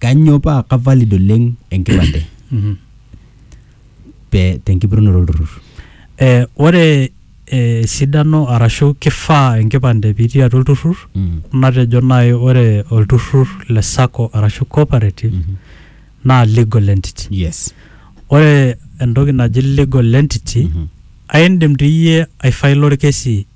Kanyoo paa ka valid oleng enkipande pe tenkipotunoto olturrur? Eh, ore eh, esidano arashu kifaa enkipande pitii atua olturrur Mm. natejo naaji ore olturrur le sacco arashu cooperative Mhm. naa legal entity Yes. ore entoki naji legal entity Mhm. aindim dii iyie aifaila orkesi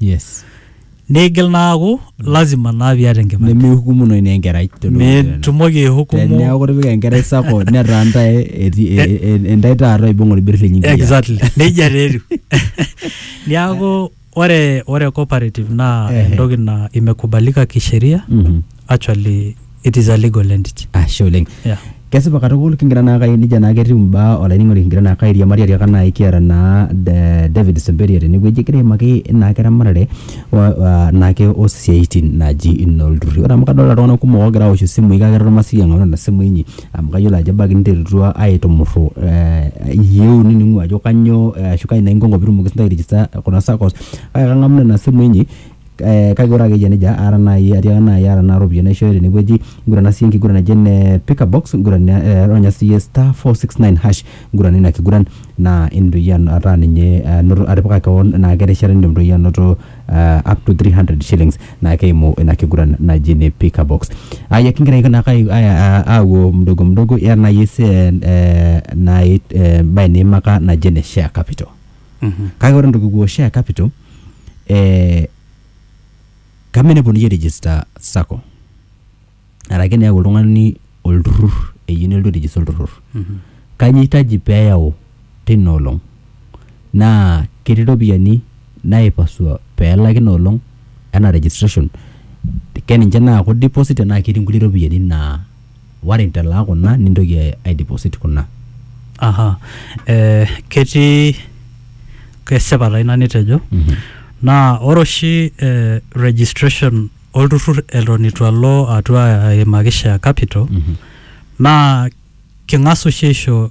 yes Neigil naaku lazima naa piata enkipande. nemihukumunoyu naa enkerai tolosho le Kenya. Mitumoki aihukumu teneeku itipika enkerai sako netaa ntae eti- e- e- e- entae taata oibung olbir lenye enkiyiaa. exactly nejia taa etiu niaku ore ore cooperative naa Ehe. entoki naa imekubalika kisheria Mhm. actually It is a legal entity. Ashe oleng. Yeah. Kesipa katukul kingira naa kai nija naa ketiu imbaa olainining'oni kingira naa kai airiamari atiaka naai kiata naa eh, David Semberia tenewueji egira aimaki naake eramatare o- ah, naake osiaitin naji inoolturruri. Ore amu kadolta iltung'anak kumok oogira aosh isimui kake eton masioki ang'amu nena simui inyi amu kayiolo ajo ebaiki ninterutua aitumurru eh, iyieu nining'u ajo kanyoo eh, ashu kai naa inko inko piitumoki sintae airigista kuna saccos kake kang'amu nena simui inyi eh, kake ore akeyie nejia ara nai atiaka nai ara naa ropiyiani naishooyo tenewueji ngurana siyie enkiguran naji ene pickabox nguran eh, ronya siyie star 469 hash ngurana ina kiguran naa indim toi iyie an- ataa ninye anoto atipika kewon naa kerishata nindim toi iyie anoto eh, up to 300 shillings naa keimu ina kiguran naji ene pickabox aya kingira ake naake ai- ai- a- apuo mdogo mdogo ira nai ese eh, nai eh, embae niimaka naji ene share capital kake ore entoki kipuo share capital eh, kame eneponunui ai register sacco arake neeku oltung'ani olturrur eyieu nelotu ai register olturrur kanyio itaji peyau tina olong naa ketii iropiyiani naipasua pelaki ina olong enaa registration keninche naaku deposit tenaa ketii inkulie ropiyiani naa. Ware intalaa kuna nintoki aideposit kuna. Aha. Eh, ketii kesipa taa ina nitejo. Naa ore oshi eh registration olturrur eton eitu alo atua aimaki share capital, naa king'as oshi aisho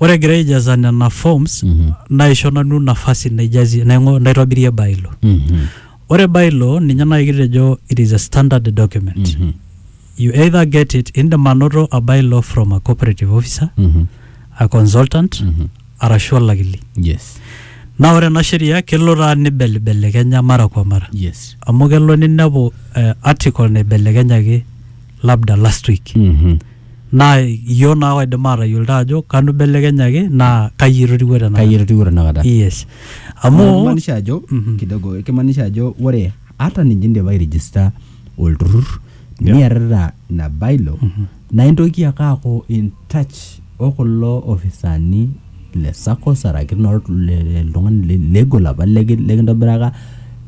Ore egira aijaza nena forms Mhm. naisho nanu nafasi naijazie naing'o naitobirie bylaw. Mhm. Ore bylaw ninye naaji kitejo it is a standard document. Mhm. You either get it indim anoto a bylaw from a cooperative officer, Mhm. a consultant Mhm. arashu olakili. Yes. Naa ore ena sheria kelo taa nibelibelekenya mara kwa mara. Yes. Amu kelo ninepu eh, article naibelekenyaki labda last week Mhm. naa iyioo naa oidim aatayiolito ajo kanu ibelekenyaki naa kai etotiwuo tenakata Kai etotiwuo tenakata? yes amu kimaanisha ajo Mhm. kidogo kimaanisha ajo ore hata ninye indipa airijista olturrur Yeah. niarrita ina bailo naa intoki ake aaku in touch o kulo ofisaani le SACCOS araki noo- le- le- oltung'ani le- legol apa leki- lekintobiraka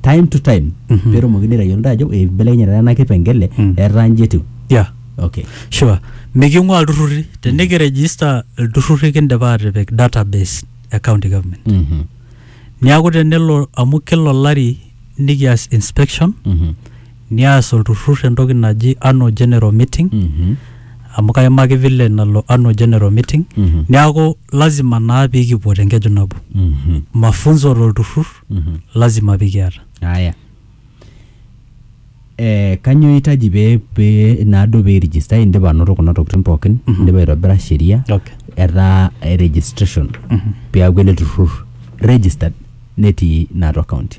time to time Mhm. peetumokini aitayiolo ntae ajo eibelekenyata ena kipengele Mm. etaa nji etiu yeah. okay sure miking'ua ilturrurri tenikirejista ilturrurri kindipa aatipik database e county government Mhm. niaku tenelo amu kila olari nikias inspection Mhm. nias olturrur entoki naji annual general meeting Mhm. amu kaimaki vile nalo annual general meeting Mhm. neaku lazima naa pikipuo tenkeju nabo Mhm. mafunzo tolturrur Mhm. lazima pikiata Aya. Eh, kanyoo eitaji pee pee naado pee register indipa anoto kuna tokitin pookin indipa aitobira sheria okay. etaa eh, registration peaku ele turrur registered netii naatua county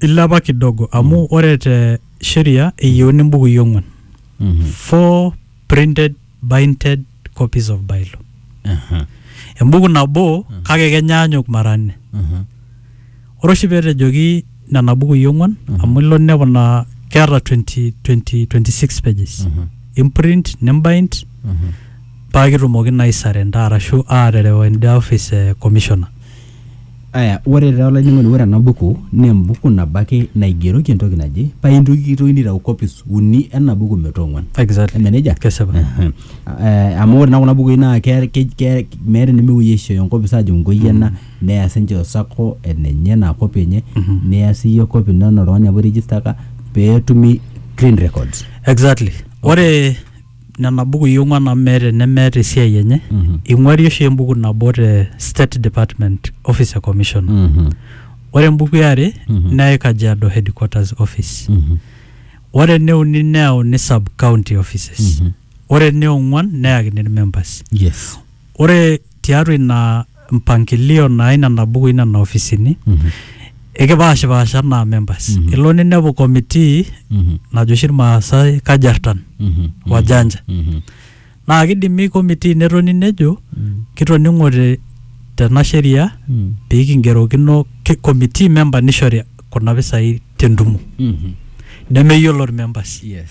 Ilepa kidogo amu mm. ore te sheria eyieuni mbukui ong'wan. Mm -hmm. Four printed binded copies of bylaw. Uh -huh. Embuku nabo uh -huh. kake kenyaanyuk mara nne. Uh -huh. Ore oshi petejoki nena bukui ong'wan uh -huh. amu ilo ninepu naa keeta 20, 20, 26 pages. Uh -huh. Imprint, nimbind uh -huh. paa kitumoki naa aisarenda arashu aaterewa enda office e commissioner. Aya ore taa olainining'oni ore ena buku naa embuku nabo ake naigeroki entoki naje paa kitokini aitau copies uni ena buku metaa ong'uan. Exactly. Eme nejia? Kesipa. Ehe. Eh, amu ore naa kuna bukui naa ke- ke- ke- meeta enemepuoi aishooyo enkopis aajo enkoi ena neya sininche o sacco enenye enaa copy enye niya siiyie copy ino enaa oltung'ani apa oirigistaka peetumi clean records. Exactly. Ore nena bukui ong'uan amu meeta enemeeta esiai enye Mhm. ing'uari oshi embuku nabo te state department office e commission Mhm. ore embuku eare Mhm. neyai kajiado headquarters office Mhm. ore eneuni neyauni sub county offices Mhm. ore eneong'uan neyakini irmembers yes ore tiatua ina mpangilio naa inena bukui nena ofisini Mhm. ekipaashipaasha anaa members Mhm. ilo ninepu committee Mhm. najo oshi irmaasai kajartan Mhm. wajanja Mhm. naa kidimi committee netoni nejo Mhm. kitoning'ote tena sheria Mhm. pee kingerokino ki- committee member nishori kuna pisai tentumo Mhm. nemeyiolo irmembers Yes.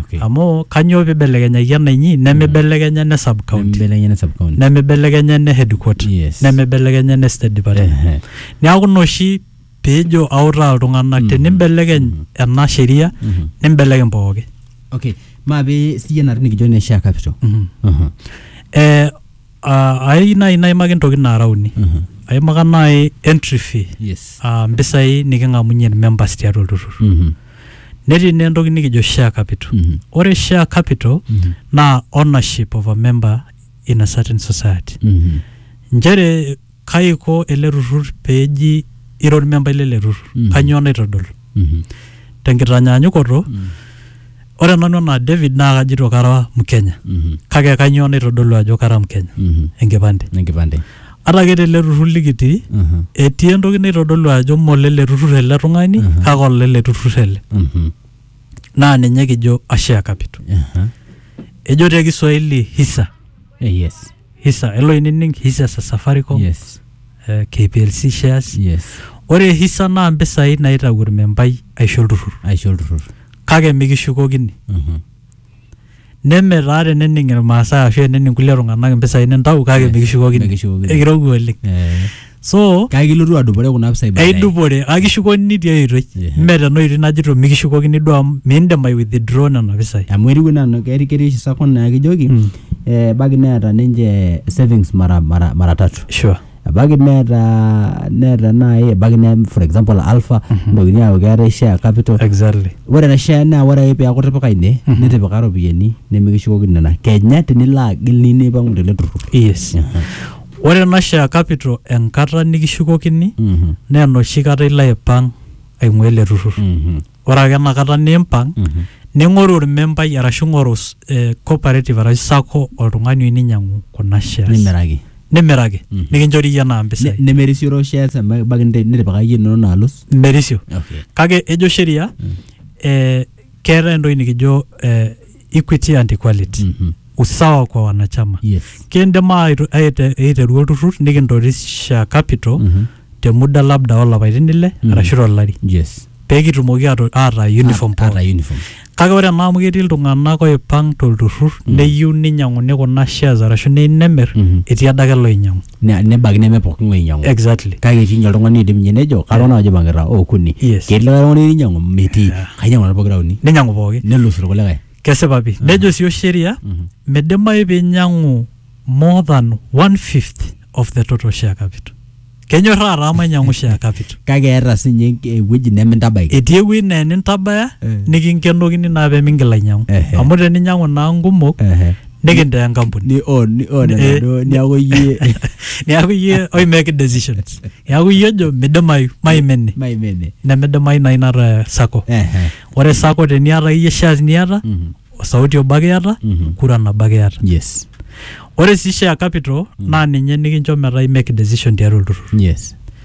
Okay. amu kanyoo peibelekenyaki ena inyi nemeibelekenya ene sub county Nemibelekenya ene sub county. nemeibelekenya ene headquarter Yes. nemeibelekenya ene state department Ehe. neaku ina oshi peejo autaa iltung'anak Mhm. tenimbelekeny Mhm. ena sheria Mhm. nimbelekeny pooki Okay. Maape siyie nanu nikijo ene share capital. Mhm. Aha. Eh, ah, ai nai naimaki ntokitin naara uni Aha. aimaka nai entry fee Yes. ah, mpisai niking'amunye members tiatua olturrur Mhm. Netii naa entoki nikijo share capital. Mhm. Ore share capital Mhm. naa ownership of a member in a certain society. Mhm. Nchere kai iko ele turrur peji ira ormembai lele turrur. Mhm. Kanyoo naitodolu? Mhm. Tenkitanyaanyukoto, Mhm. ore nanu enaa David naa kajito kara Mkenya. Mhm. Kake kanyoo naitodolu ajo kara Mkenya? Mhm. Enkipande. Enkipande. ata ake tele turrur likitii Mhm. etii entoki naitodolu ajo molele turrur ele tung'ani Mhm. kake olele turrur ele Mhm. naa ninye kijo ashare capital Aha. ejo te kiswahili hisa Eh, yes hisa elo inining hisa sa safaricom yes eh, kplc shares yes ore hisa naa mpisai naitau ormembai aisho olturrur aisho olturrur kake mikishukokini Mhm. Neme taa tenening Ilmaasai ashu enening kulie tung'anak impisai nintau kake mikishukokini. Mikishukokini. Ekirowua oleng. Eh, So, kake ilotu adupore kuna pisai baadaye. eidupore kake kishukokini tiai oitoi. Ehe. Mme tena oitoi najito mikishukokini duo amu miindim ai withdraw nena pisai. amu etiu enaa na- keti- ketii oshi sacco naa kijoki eh, ebaiki neeta ninche savings mara, mara, mara tatu Sure. ebaiki neeta neeta naaji ebaiki ne for example alpha nitokini aaku keetae share capital exactly ore ena share naa ore ake peeku itipika ine nitipika iropiyiani nemikishukokini nena kenya tinilo agil niyieu nipang'u tele turrur yes ore ena share capital enkata nikishukokini Mhm, naa enoshi kata ilo aipang aing'ua ele turrur mhm. ore ake enakata nimpang Mhm. ning'oru ormembai arashu ing'oru s- eh, cooperative arashu sako oltung'ani oyieu ninyiang'u kuna shares nimiraki nimiraki Mhm. nikinchori iyie naa Ne- mpisai nemerisioro shares emba- ebaiki nite- nitipika iyie inono naalus merisio okay kake ejo sheria eh, keetae entoki nikijo eh, equity and equality Mhm. usawa kwa wanachama Yes. kindim aaitu- aite- aiteru olturrur nikintorisha capital Mhm. te muda labda olapaitin ile Mhm. arashu tolari Yes. pee kitumoki ato- aataa uniform Ata- ata pooki uniform. kake ore ena amu ketii iltung'anak oipang tolturrur neyieu ninyiang'uni kuna shares arashu neyieu nemir Mhm. etii adake loinyiang'u ne- nebaiki neme pooki ng'ae oinyiang'u exactly kake etii ninye oltung'ani oidim ninye nejo kara nanu ajo maing'ita okuni Yes. ketii likae tung'ani oinyiang'u metii kainyiang'u nanu pokira uni ninyiang'u pooki nelus irkulikae kesipa pi nejo sii osheria midimayu pinyiang'u more than one fifth of the total share capital kenyorraa taa mainyiang'u share capital kake eeta sinye enk- ewueji nemintabaiki etii ewueji naa enintabaya Eh. nikinkenokini naa pemingil ainyiang'u Ehe. amu teninyiang'u naa nkumok Ehe. nikintaa enkampuni ni own ni own Eh. enaduo niaku iyie neaku iyie oi make decisions neaku iyie ojo midimayu maimene maimene nemidimayu naa inata sako Ehe. ore sako teniata iyie shares niata Mhm. osauti obo ake iata Mhm. kura nabo ake iata yes ore sii share capital naa ninye nikincho metaa i make decision tiatua olturrur yes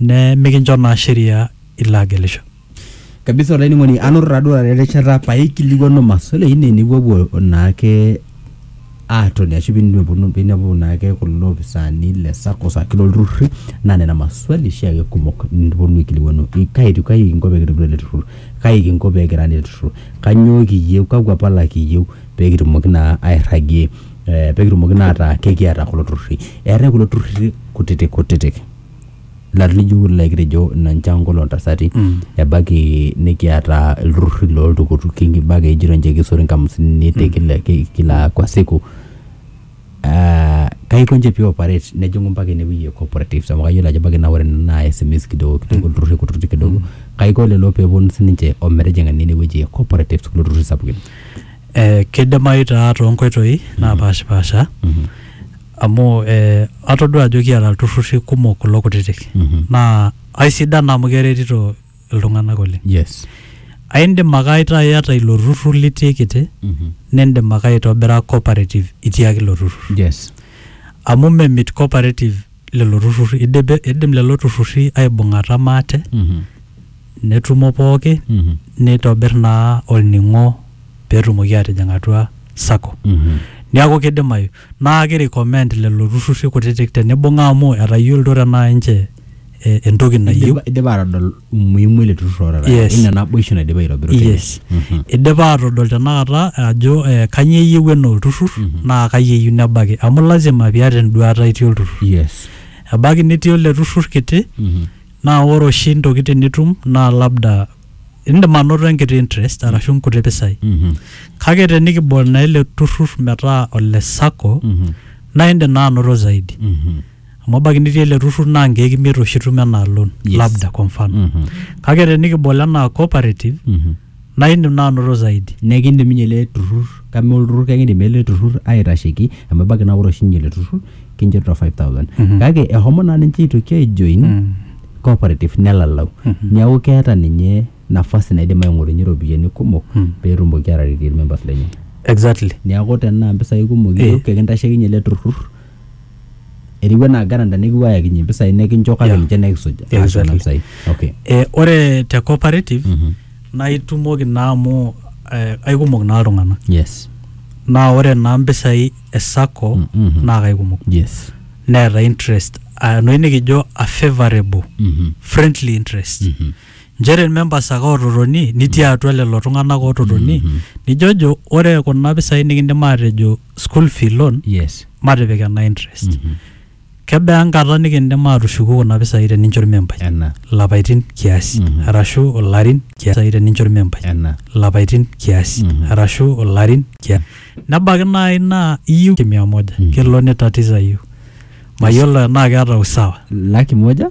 nemikincho naa sheria ilo agelisho. Kabisa olainining'oni anoto taa duo taata erishata paikilikuanu maswali ainei nipuopuo naake aatoni ashu piinipuopuo piinepuo naake kulo opisaani le SACCOS ashu loo lturruri naa nena maswali oshi ake kumok niponu aikilikuanu kai etiu kai kinko peekitobiru ele turrur, kai kinko peekira ele turrur, kanyoo kiyeu, kakwa pala kiyeu peekitumoki naa airragie ee pekitumoki naa ataa kekiata kulo turruri. Eetai kulo turruri kutitik kutitik. larin lijo kulo likitejo ina nchankolo oltasati ebaiki nikiata ilturrurri loltukutuki ebaiki ejito nche kisot inkamusini te kila, ki- kila kwa siku Ah, kaiko nche pi operate nejing'u mpaka inewueji e cooperatives amu kayiolo ajo ebaiki naa ore ena naa SMEs kidogo kidogo ilturrurri kutitik kidogo kaiko lelo peponu sininche ometijing'a naa inewueji e cooperatives kulo turrurri sapukin Eh, kidimayu taa tonkoitoi napashipasha amu eh, atodua ajo kiata ilturrurri kumok kulo kutitik Mhm. naa aisidan amu keretito iltung'anak oleng yes aindim ake aitaa iyata ilo turrur litii kiti Mhm. nindim ake aitobira cooperative itii ake ilo turrur yes amu memit cooperative lelo turrurri Idipe- idim lelo turrurri aibung'ata maate Mhm. netumo pooki Mhm. neitobir naa olning'o peetumoki atijing atua sacco Mhm. niaku kidimayu Naa keirecommend lelo turrurri kutitik tenibung'a amu etayiolito tenaa ninche entoki nayieu. Eidipa aatodol umuhimu ele turrur oota taata. Yes. Eina naboishu naidipa aitobiru tene. Yes. Eidipa aatodol tenakata ajo kanyoo eyieu enaa olturrur naa kai eyieu nebaiki. Amu lazima piata enduaata itii olturrur. Yes. Ebaiki nitii ele turrur kiti Naa ore oshi ntokitin nitum naa labda indim anoto enkiti interest arashu nkuti pisai. Kake tenikibol naa ele turrur metaa ole sacco naa indim naa anoto zaidi. Amu ebaiki nitii ele turrur naa nkeek imiet oshi itum enaa loan labda kwa mfano. Kake tenikibol enaa cooperative naa indim naa anoto zaidi. Naa ekiindim ninye ele turrur kama olturrur kekiindim ele turrur aitasheki amu ebaiki naa ore oshi ninye ele turrur kinchorita five thousand kake eshomo naa ninche aitoki aijoin cooperative nelalau. Neeku keeta ninye nafasi naidim aing'orunyie iropiyiani kumok peetumoki aataretie irmemba lenye. Exactly. Neeku tenaa impisai kumok iyieu kekintasheki ninye ele turrur eriwua naa garanta nikipuo ayakinye impisai nekincho kake Yeah. ninche nekisuj aas kuna Exactly. pisai okay Eh, ore te cooperative Mhm. naa itumoki naa amu eh, aikumok naa iltung'anak yes naa ore naa mpisai e sacco Mm, mhm. naa kaikumok yes neeta interest ah, enoshi nikijo a favorable Mhm. friendly interest Mhm. nchere ilmembas ake oototoni nitii atua lelo tung'anak oototoni nijojo ore kuna pisai nikindim aatejo school fee loan yes matipik ena interest Mhm. kebaa enkata nikindim aatushuku kuna pisai tenincho ilmembai ena lapaitin kiasi Mhm. arashu ilarin kiasi tenincho ilmembai ena lapaitin kiasi Mhm. arashu ilarin kiasi nebaiki naaji naa iyieu mia moja Mhm. kelo nitatiza iyieu mayiolo enaa keeta usawa laki moja